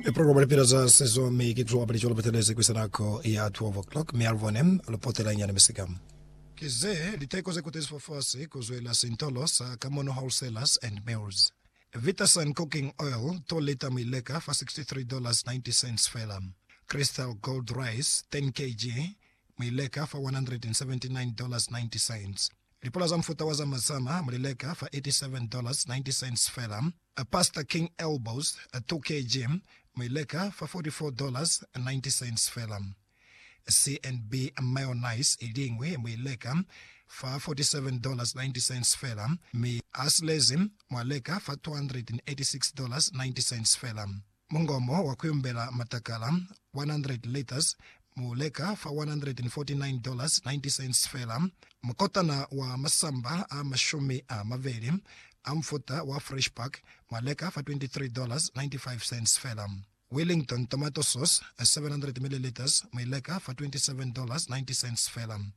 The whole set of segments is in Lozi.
E programa Lipila za Sezo mi ki Club Lico Lupatelezi kuisa nako ya 12 o'clock mi alubone lupotela nyana misika. Ki ze liteko ze kutezifwa fasi ku zwela sintolo sa Kamono Wholesalers and Mills. Vitasun Cooking Oil, 2 lita mu ileka fa $63.90 fela. Crystal Gold Rice, 10 kg, mu ileka fa $179.90. Lipula za mufuta wa zamazama mu li leka fa $87.90 fela. Pastor King Elbows, 2 kg, mu i leka fa $44.90 fela. CNB Mayonnaise i liñwi mu i leka fa $47.90 fela, mi Aslezi mwa leka fa $286.90 fela. Mungomo wa kuyumbela matakala 100 liters mu leka fa $149.90 fela. Mukotana wa masamba a mashumi a mabeli a mufuta wa Fresh Pack mwa leka fa $23.95 fela. Wellington tomato sauce 700 milliliters mwi leka fa $27.90 fela.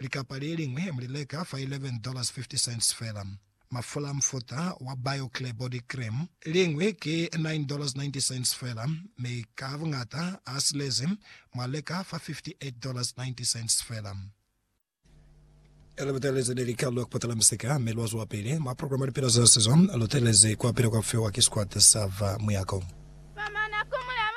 Likapa le liñwi mu li leka fa $11.50 fela. Mafula a mufuta wa BioClear Body Cream, liñwi ki $9.90 fela, mi ka buñata a silezi mu a leka fa $58.90 fela. Lu butelezi ni likalule ku patala misika, mi lwa zwapili mwa programa Lipila za Sizo. Lu telezi ku apila kwa fiwa ki sikwata sa va muyako.